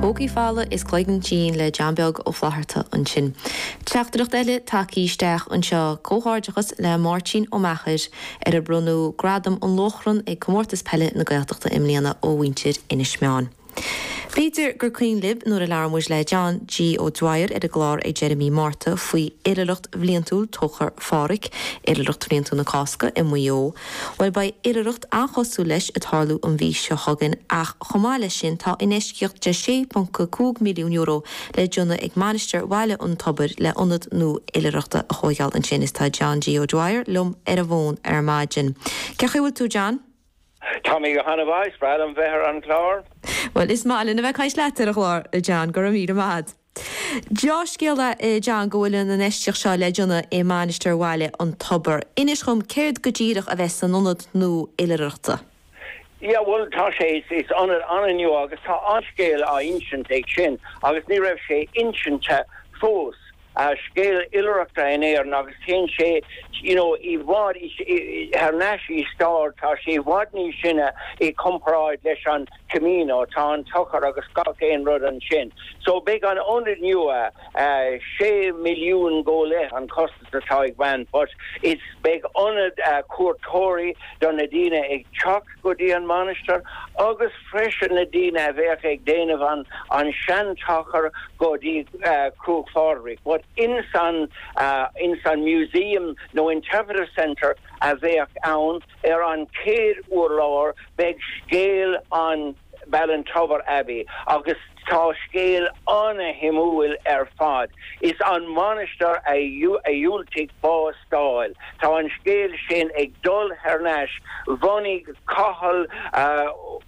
Pócaí folamh is cloigeann tinn le John Beag Ó Flatharta ansin. Teachtaireacht eile tagtha isteach anseo, comhghairdeachas le Máirtín Ó Meachair ar bronnadh Gradam an Lóchrann ag Comórtas Peile na Gaeltachta i mbliana ó mhuintir Inis Meáin. B'fhéidir gur cuimhin libh nuair a labhair muid le John G. Ó Dwyer ar an gclár ag deireadh mí Márta faoi oilithreacht bhliantúil Tóchar Phádraig, oilithreacht bhliantúil na Cásca i Maigh Eo. Bhuel, beidh oilithreacht an-chosúil leis ag tarlú an mhí seo chugainn ach chomh maith leis sin tá infheistíocht de €6.5 milliún le déanamh ag Mainistir Bhaile an Tobair le ionad nua oilithreachta a thóigeáil ansin is tá John G. O'Dwyer liom ar an bhfón ar maidin. Cén chaoi a bhfuil tú, John? Tá mé go han-mhaith, is breá liom bheith ar an gclár. Bhuel, is maith linn a bheith ag caint leat ar an gclár, a John, go raibh míle maith agat. Deá-scéala i ndomhnach go bhfuil an infheistíocht seo le déanamh i Mainistir Bhaile an Tobair. Inis dhom, céard go díreach a bheas san ionad nua oilithreachta? Yeah, bhuel, tá sé, is ionad an-nua agus tá an-scéal á insint ag sin agus ní raibh sé insinte fós, scéal oilithreachta in Éirinn agus téann sé, you know, i bhfad thar n-ais i stair, tá sé i bhfad níos sine i gcomparáid leis an. Camino. Tá an Tóchar agus gach aon rud ansin. So beidh an ionad nua, sé milliún go leith an costas atá ag baint but is beidh ionad cuairteoirí do na daoine ag teacht go dtí an mainistir agus freisin na daoine a bheadh ag déanamh an an sean-Tóchar go dtí Cruach Phádraig but ins an ins an museum nó interpretive centre a bheadh ann Ar an chéad urlár beidh scéal an Ballintubber Abbey agus tá scéal an-shuimiúil ar fad. Is an mhainistir a dhiúltaigh bás a fháil, tá an scéal sin ag dul thar n-ais, bhunaigh Cathal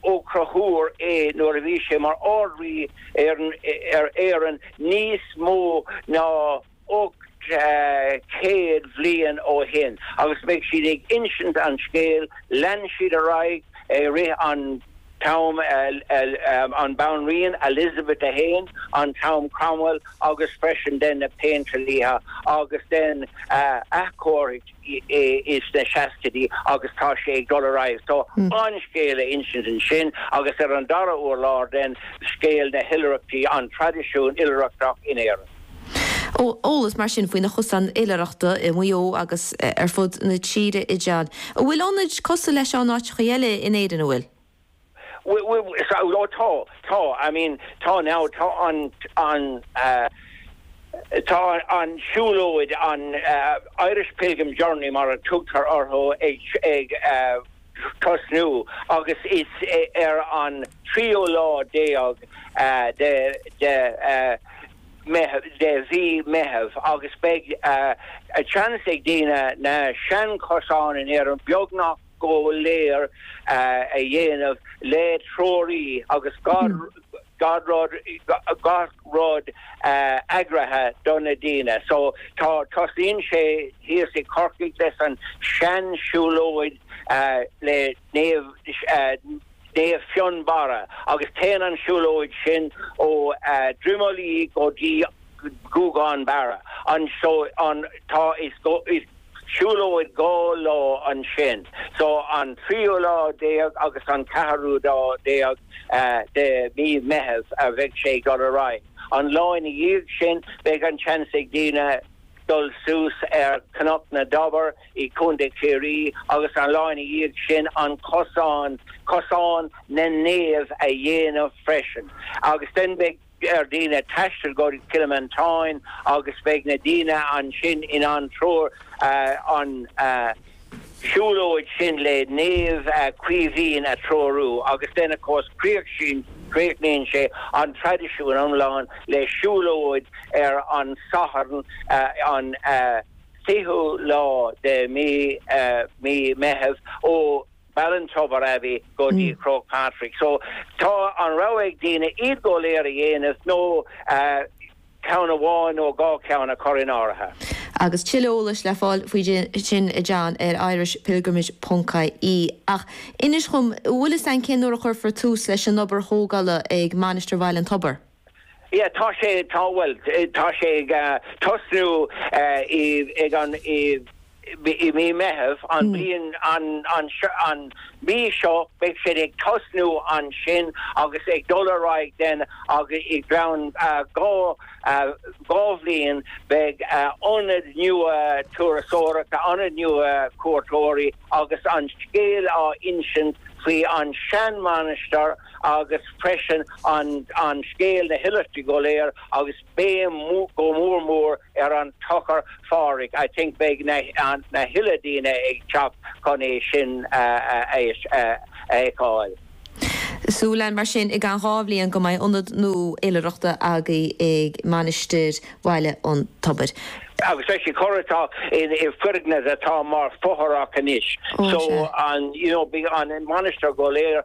Ó Conchúir é nuair a bhí sé mar Ard-Rí ar Éirinn níos mó ná. ocht gcéad bhliain ó shin agus beidh siad ag insint an scéil, lean siad ar aghaidh i rith an t-am an Banríon Elizabeth a hAon, an t-am Cromwell agus freisin then na péindlíthe agus then athchóirithe sna seascaidí agus tá sé ag dul ar aghaidh. So, an scéal a insint ansin agus ar an dara urlár then scéal na hoilithreachtaí, an traidisiún oilithreachtach in Éirinn. Ó, eolas mar sin faoi na cosáin oilithreachta i Maigh Eo agus ar fud na tíre i dteannta. An bhfuil ionaid cosúil leis seo in áiteacha eile in Éirinn, an bhfuil? Ó, tá, tá. I mean, tá na, tá an, an, tá an siúlóid, an, Irish Pilgrim Journey mar a tugtar orthu ag, ag, tosnaíonn sé ar an tríú lá déag de mhí Meitheamh agus beidh an seans ag daoine na seanchosáin in Éirinn beagnach go léir a dhéanamh le treoraí agus gach rud eagraithe do na daoine so tá tosaíonn sé thíos i Corcaigh leis an seansiúlóid le Naomh Naomh Fionnbarra agus téann an siúlóid sin ó Drimoleague go dtí Gúgán Barra anseo an tá siúlóid dhá lá ansin so an tríú lá déag agus an ceathrú lá déag de mí Meitheamh a bheidh sé ag dul ar aghaidh. An lá ina dhiaidh sin beidh an seans ag daoine dul suas ar Chnoc na dTobar i Contae Chiarraí agus an lá ina dhiaidh sin an cosán, Cosán na Naomh a dhéanamh freisin agus then beidh. ar dhaoine taisteal go dtí Cill Mhantáin agus beidh na daoine ansin in ann treoir an siúlóid sin le Naomh Caoimhín a threorú agus then of course críochnaíonn sé an traidisiún iomlán le siúlóid ar an Satharn an 20ú lá de mhí Meitheamh ó Ballintober Abbey go dtí Croagh Patrick. So tá an rogha ag daoine iad go léir a dhéanamh nó ceann amháin nó dhá cheann a chur in áirithe. Agus tuilleadh eolais le fáil faoi sin, a Sheáin, ar irishpilgrimage ponc ie. Ach inis dhom, an bhfuil fhios a'inn cén uair a chuirfear tús leis an obair thógála ag Mainistir Bhaile an Tobair? Yeah, tá sé, tá, bhuel, tá sé ag tosnú i, ag an, i, i mí Meitheamh an bhliain, an, an, an mhí seo, beidh siad ag tosnú ansin agus ag dul ar aghaidh then agus i gceann dhá, dhá bhliain beidh ionad nua turasóireachta, ionad nua cuairteoirí agus an scéal á insint faoi an seanmhainistir, agus freisin an scéal na hoilithreachta go léir agus béim go mór mór ar an Tóchar Phádraig. I think beidh na huile daoine ag teacht chun é sin a fheiceáil. Súil ann mar sin i gceann dhá bhliain go mbeidh ionad nua oilithreachta againn i Mainistir Bhaile an Tobair. Agus le cur isteach i foirgneamh atá mar fothrach anois so an you know bhí an mhainistir go léir,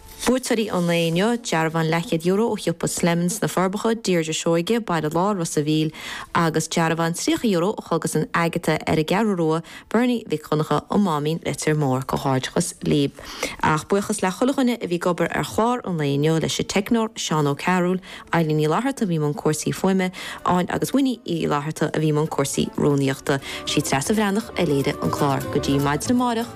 Buaiteoirí an lae inniu, Dearbhán leathchéad euro ó Shiopa Slemons, Na Forbacha, Deirdre Seoige, Baile Láir, Ros a' Mhíl, agus dearbhán tríocha euro ó Chógaslann Agata ar an gCeathrú Rua, Bernie Mhic Dhonncha, An Máimín, Leitir Móir. Comhghairdeachas libh. Ach buíochas le chuile dhuine a bhí ag obair ar chlár an lae inniu, leis an teicneoir, Séamus Ó Cearúil, Eileen Ní Fhlatharta a bhí i mbun cúrsaí fuaime, Áine agus Winnie Uí Fhlatharta a bhí i mbun cúrsaí rúnaíochta. Sí Treasa Bhreathnach a léirigh an clár. Go dtí maidin amáireach.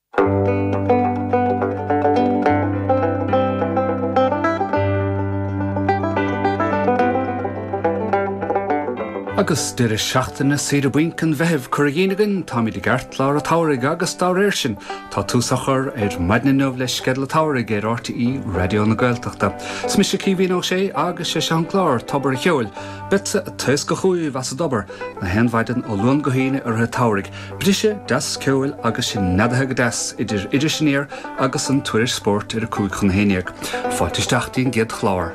Agus deireadh seachtaine saoire bainc an Mheithimh curtha dínn againn, táimid i gceartlár an tsamhraidh agus dá réir sin, tá tús á chur ar maidin inniu le sceideal an tsamhraidh ar RTÉ Raidió na Gaeltachta. Is mise Caoimhín Ó Sé agus 'sé seo an clár, Tobar an Cheoil. Beadsa ag taoscadh chúibh as an dtobar, na haon mhaidin ó Luan go hAoine i rith an tsamhraidh, Briseadh deas ceoil agus sinn neadaithe go deas idir Iris Aniar agus an Tuairisc Spóirt ar a cúig chun a haon dhéag. Fáilte isteach dtí'n gcéad chlár.